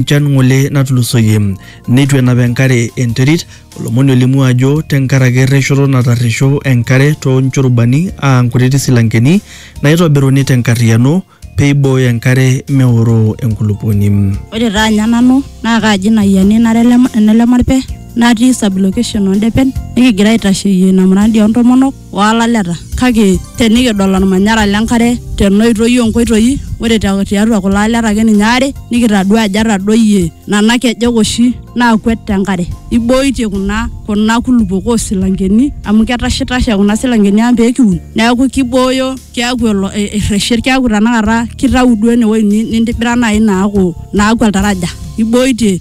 enchan ng'ole natulusoyie neitu enap enkare enterit olomoni olimu ajo tenkaraki erreshoto natarresho enkare too nchurubani aa nkutiti silankeni naitobiruni tenkarriyiano peibooyo enkare meoroo enkulupuoni. Ore taa ninye nanu naa kaaji ina ayiani nara ene Lemarpe natii sub location oo Ndepen nikigira aitasheyie ina muradi oo ntomonok olaleta kake tenikidol olmanyara lenkare tenoitoi onkoitoi ore tiatua kulo aleta ake ninye aare nikitadua ajo etadoyie nana kejek oshi naakwet tenkare ibooitie kuna kuna kulupok osilankeni amu ketashitashe kuna silankeni ang pekiun neeku kibooyo keeku elo erreshet keeku tanakata kitau duo enewoi nintibira naaji naaku naaku oltaraja ibooitie.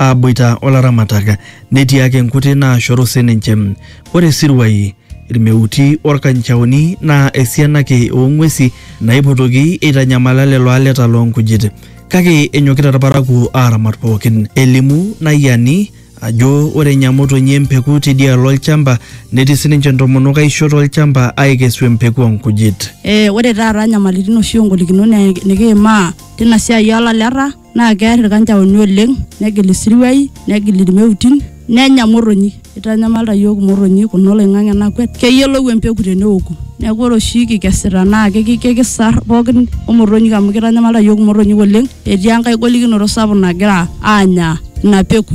aaboita o laramatak netii ake nkuti naashoru sininche. Ore isiruai, ilmeuti o lkanchaoni naa esiana ake oo ng'uesi naaipotoki eitanyamala lelo aleta loo nkujit. Kake enyokita ilparakuo aaramat pooki. Elimu Nayiani ajo ore enya motonyi empeku teidialo olchamba netii sininche ntomonok aishoo to lchamba aaikesu empeku oo nkujit. Ore taata nyamalitin oshi o ngolikinot nikiimaa teina siai oo laleta. naa kear ilkanjaoni oleng negil isiruai negil ilmeutin nenya motonyi eitanyamalita iyiook imotonyi kuna oloing'ang'e nakwet keyiolou empeku teneoku neeku ore oshi kikesita naa kiki- kikisar pookin omotonyik amu keitanyamalita iyiook imotonyik oleng etii enkae golikinoto sapuk nagira aanya ina peku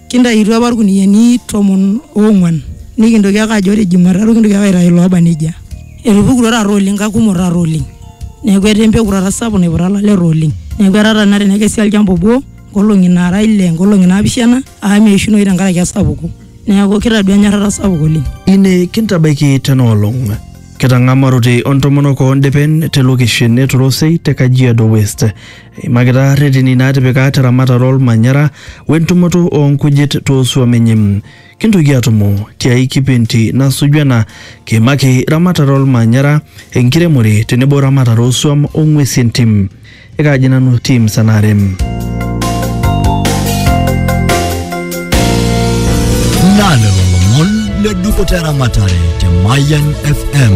Kintayutuo apa ilkuniyiani tomon oong'uan nikintoki ake ajo ore Jumatatu kintoki ake aitayu looba nejia. Etupukutuo taata oleng kakumok taata oleng. Neeku etaa empeku taata sapuk naiputa ilaleta oleng. Neeku etaa taata tenakata tenekesi olchamba obo nkolong'i naara ile, nkolong'i naapishana amu meishunoyu tenkaraki esapuko. Neeku kitadua enyorrata sapuk oleng. Ine kintabaiki tena olong. Kitang'amarote o ntomonok oo ndepen te lokeshen e Torosei te Kajiado West. Eimakita reteni naatipika te ramatare olmanyara we ntumoto oo nkujit too suam enye. Kintoki aatumo ti ai kipindi nasuju ena kiimaki ramatare olmanyara, enkiremore tenebo ramatare oo suam o ng'uesi entim. Ekaaji nanu Tim Sanare. Na lelo lomon le dupoto eramatare te Mayan FM.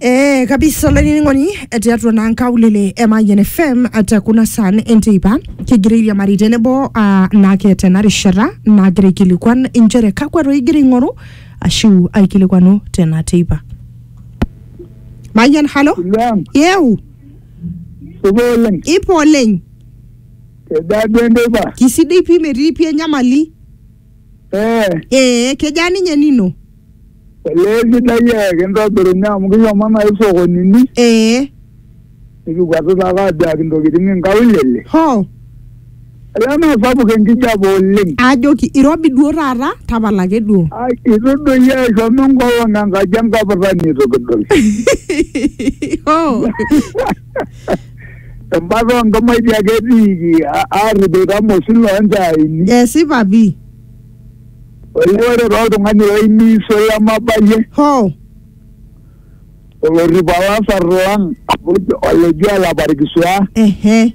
Eh, kabisa olainining'oni tiatua naa nkaulele e Mayian FM te kuna saan enteipa kigira airiamari tenebo ah, naake tena rishata naagira aikilikuan inchere kakwa toi igira aing'oru ashu aikilikuanu tena teipa Mayian halo Ilang, yeu supa oleng. ipo oleng Edaa duo enteipa? kisidai pii metii pii enyamali Eh, ee kejaa ninye nino olee sidai eh, kintobirunye amu kishomo naa isokonini ee nikikwatu taata aduaki intokitin inkaulele. hoo Olee naa sapuk enkijape oleng. ajoki irobi duo taata tapala ake duo Ai, Itu doi eshomo enkolong enkaji enkapitani itu kidol. hoo embata onkamaiti ake etiiki a- aarrip ilkamosin loonchaaini. esipa pii Olee ore toltung'ani oimiiso lemabayie hoo olorrip olasar lang' oji- oleji olaparkisua ehe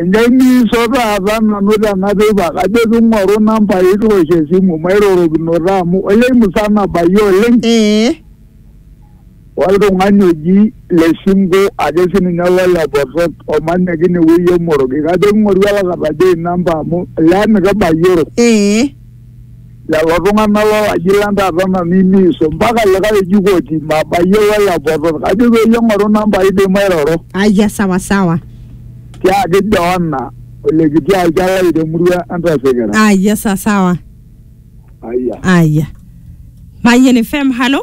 Enjainisho taata nanu tena teipa, kajo king'oru nambai kiwosh esimu mairorokinoto amu olee musana abayie oleng. Ee. Oltung'ani oji Lesingo ake sininye lole Botor omanya ake inewueji e Moroki. Kajo king'oru olakata ajo inamba amu olee mikibayioro. Ee. lelo tung'anak lolaji lang taata nanu imiiso mpaka likae oji koti mabayiolo elapoto kajo peyie eng'oru namba ai dei mairoro Aya sawa sawa. tiaki Joana olekiti alcha lai temurua entasekera Aya sawa sawa. aya Aya. Mayen FM, halo.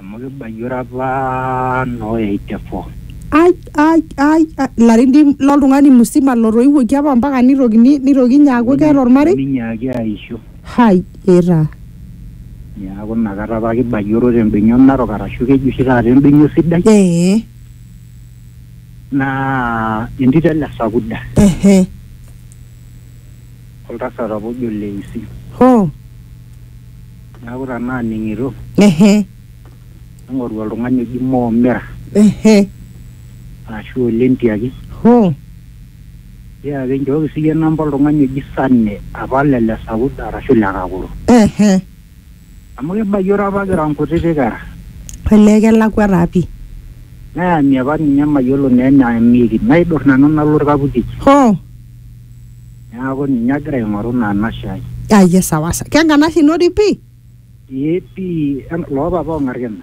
amu kibayie ore apa noo eighty four ai ai ai ai, ilarin dii loltung'ani musima lotoiwuoki apa mpaka nitokini nitoki inye aaku keeta ormarei ninyaaki aisho hai etaa niaku inakata apa kibayioro tembenia narok arashu keji oshi taata embenia sidai ee naa entito ele sakuda ehe oltasat apa ojo Leisi. Hoo! Neaku tenaa aning'ito. Ehe. Ning'oru oltung'ani oji Mo Mira. Ehe. Arashu Ole Ntiaki. Hoo! Tiaaki nchooki siyie namba oltung'ani oji Sane apa le Lesaud arashu le Kakuru. Ehe. Amu kibayioro apa kira nkutiti kera. Olee kelakwa taa pi. Nayamie apa ninye mayiolo naa eneamieki. Naidur nanu nalo olkaputi. Hoo. Neaku ninye agira aing'oru ina anashe ai. Aye sawa sawa. Kenkanashe ino dii pi? Ee pi. Loopapa o Ng'arkena.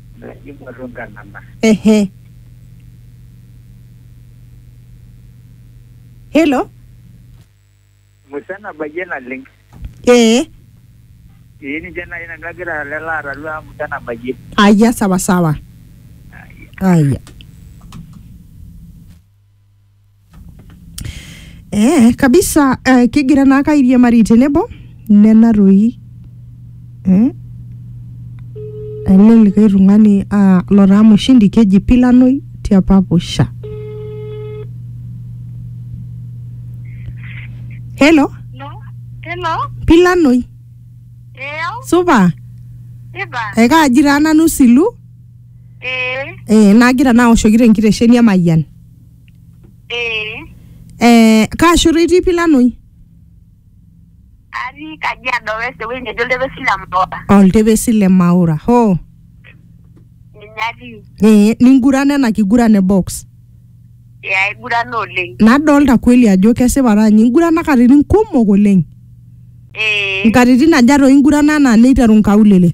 Naipotu nkalama. Ehe. Hello? Musa nabayie naleng. Ee. Ee ninche naaji nanu agira lelo atalu amu Musa nabayie. Aya sawa sawa. Aya. ee kabisa eh, kigira naake airiamari tenebo nena toi eh? ele likae tung'ani ah, lotaa mushindi keji pilanoi tiapa pusha helo No. Hello. pilanoi Eyo. supa Iba. ekaaji taa nanu silu Eh. eh, nagira naoshoki tenkitesheni emayian ee Eh, kaa shoto itii Pilanoi? atii kajiado west ewueji neji oltepesi le mbola Oltepesi le Maura. Hoo. ninye atii Eh, ningurana ena kiguran e box. ee aigurana oleng Nadolta kweli ajo kesipa taa ninye ingurana katitin kumok oleng. ee Nkatitin aja toi ingurana anaa neiteru nkaulele?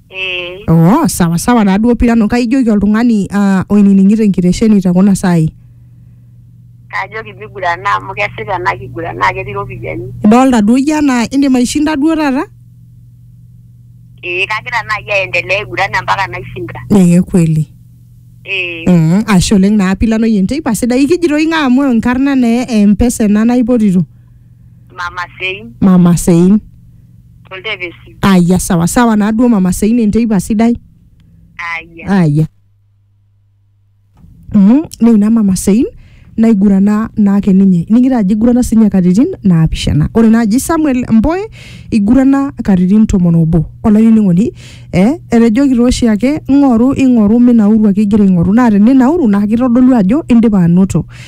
ee oh sawa sawa taaduo pirano kaijoki oltung'ani uh, oinining'ito enkitesheni te kuna saai kajoki migurana amu kesita ena kiguran naa ketii iropiyiani idolta duo iyie anaa indim aishinda duo taata ee kagira naaji aendelea aiguran mpaka naishinda ee kweli ee mm, ashe oleng naa pilanoyie enteipa sidai ikijitoi ng'a amu enkarna naa empesa ena naipotito mama sein mama sein toldepesi aya sawa sawa naaduo mama seina enteipa sidai aya aya mm, neina mama sein naigurana naake ninye ning'ira ajo igurana sinye katitin naapishana ore naaji samuel mboe igurana katitin tomon obo olainining'oni eh, etejoki tooshi ake ing'oru ing'oru minauru ake igira aing'oru naa teninauru naa kitodolu ajo indipa anoto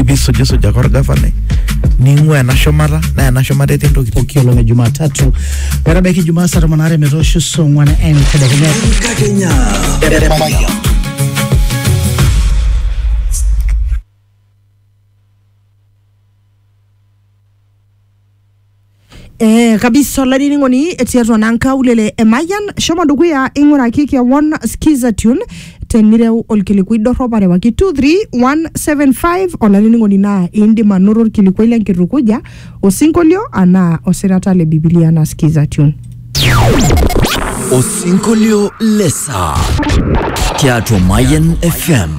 ibisujisuj ake orgavanai ning'ua ena shumata naa ena shumata etii ntokitin pooki olong e Jumatatu metabaiki Jumaa saa tomon aare metoosho saa ong'wan entedekenya. Enkakenya. Eh, kabisa olainining'oni tiatua naa nkaulele e Mayian shomo dukuya ing'uraki kewon skiza tune tenireu olkilikuai dorrop arewaki 23175 olainining'oni naa indim anoto olkilikuai lenkitukuja osinkolio anaa osirata le bibilia anaa skiza tune Osinkolio le saa tiatua Mayan FM.